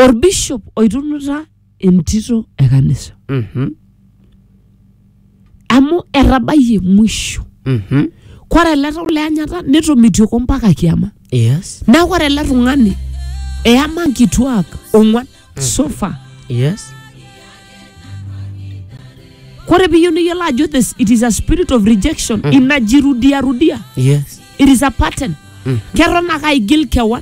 orbishop oitunuta entito e kanisa Mhm. amu etabayie mwisho Mhm. kore ele tau le anyata netomitioko mpaka kiama Yes. neeku ore ele tung'ani eyama nkituak ong'wan sofa Yes. kore piyieu niyiolo ajo this it is a spirit of rejection inajirudiarudia Yes. it is a pattern keton ake aigil kewan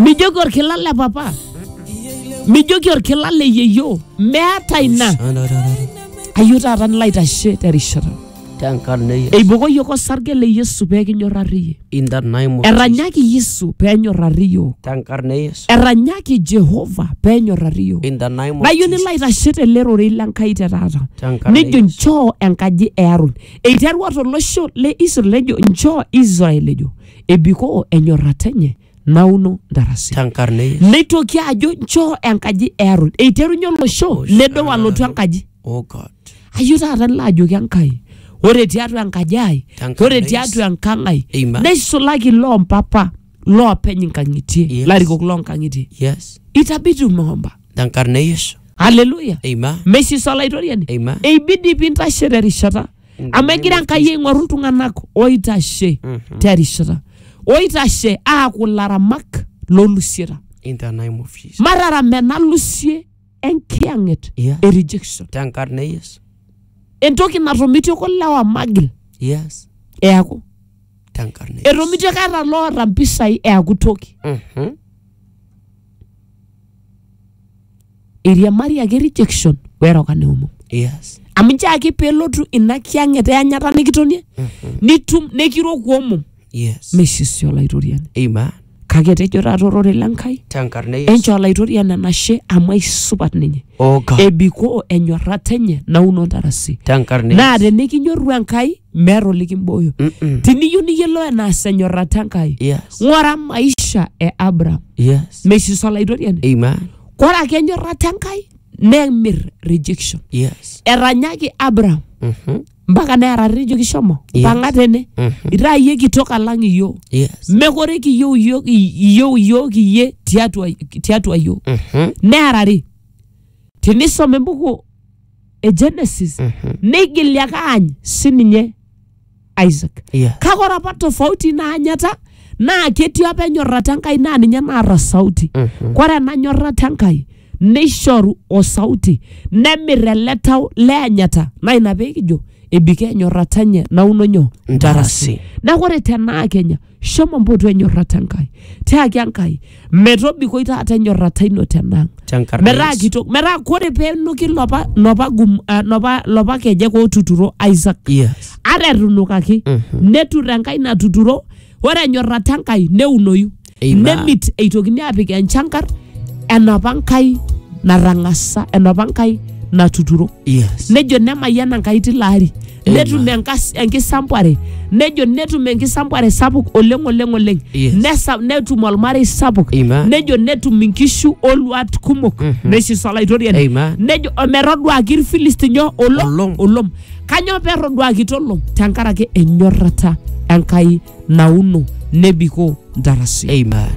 mijoki orkila le papa mijoki orkila le yeyio meeta ina ayieu taata nilo aitashe terishata tenkarna e Yesu. eibokoki yiok osarge le yesu pee kinyorrari iyie In the name of eranyaki yesu pee enyorrari yiok tenkarna e Yesu. eranyaki jehova pee enyorrari yiok In the name of nayieu nilo aitashe tele rorei le nkai te taata Tenkarna nejo Yesu. nchoo enkaji e aron Eiterua tolosho le Israel ejo nchoo Israel ejo ebikoo enyorrata enye nauno ntarasi. tenkarna e Yesu. Neitoki ajo nchoo enkaji e Aron. Eiterunye olosho nedou alotu enkaji. Oh God. Ayeu taata nilo ajoki Enkai, ore tiatua enkaji ai, Tenkarna ore e tiatua enkang' ai, Amen. neisulaki loo mpapa. loopeny inkang'itie Yes. larikok loonkang'itie Yes. itabidi umeomba Tenkarna e Yesu. haleluya Amen. mesis olaitoriani Amen. eibidi pintashe terishata In the amu name egira of enkai aing'oru iltung'anak oitashe Mhm. terishata oitashe aaku laramak lolusieta In the name of Jesus. marara menalusie enkiyang'et Yes. e rejection Tenkarna e Yesu. entoki natomitioko lewa magil Yes. eaku tenkarna e Yesu. eton itu aikata loota mpisai eaku toki Mhm. eiriamari ake rejection weroka neomom yes amu nche ake pelotu ina kiang'et eanyata nikitonie nitum nekiroku omom yes meisisi olaitoriani amen kake etejo taata ororei le Nkai tenkarna e Yesu enchoo olaitoriani enashe amu aisupat ninye o God ebikoo enyorrata enye nauno ntarasi tenkarna e naa Yesu tenikinyorru Enkai meeta olikimbooyo Mm-mm. tiniyieu niyiolou enaas enyorrata Enkai yes ng'ora maisha e Abraham yes meisisa olaitoriani amen kore ake enyorrata Enkai nemir rejection yes etanyaki Abraham Mhm. mpaka nearari nejoki shomo Yes. mpang'a tene Mhm. itaa iyie kitok alang iyio Yes. mekore kiyieu iyio iyieu iyiook iyie tiatua tiatua iyio Mhm. nearari tinisoma embuku e genesis Mhm. neigili ake aany sininye isaac Yes. kake ore apa tofauti naanyata naa ketii apa enyorrata enkai naa ninye naata sauti Mhm. kore ena nyorrata enkai neishoru o sauti, nemir ele tau le anyata. Naa ina pee kijo ebikoo enyorrata enye nauno nyoo? Ntarasi. Neeku ore tenaa Kenya, shomo mpotu enyorrata Enkai. Tiaki Enkai, metobikoi taata enyorrata ino tenang. Tenkarna Metaa Yesu. kitok, metaa kore pee enuki lopa, lopa, gum, ah, lopa, lopa kejek ootuturo Isaac Yes. ata etunukaki netur enkai natuturo ore enyorrata enkai neunoyu Amen. nemit eitokini aapik enchankar enapa nkai natang'asa enapa nkai natuturo Yes. nejo nemayiana enkai tilo ari Amen. netum enkas- enkisampuare nejo netum enkisampuare sapuk oleng oleng oleng Yes. Nesa- netum olmarei sapuk Amen. nejo netum inkishu oluat kumok Mhm. neisisa olaitoriani Amen. nejo ometoduaki irfilistinyo olom Olom. olom Kanyoo pee erroduakito ilo? Tenkaraki enyorrata Enkai nauno nebikoo ntarasi. Amen.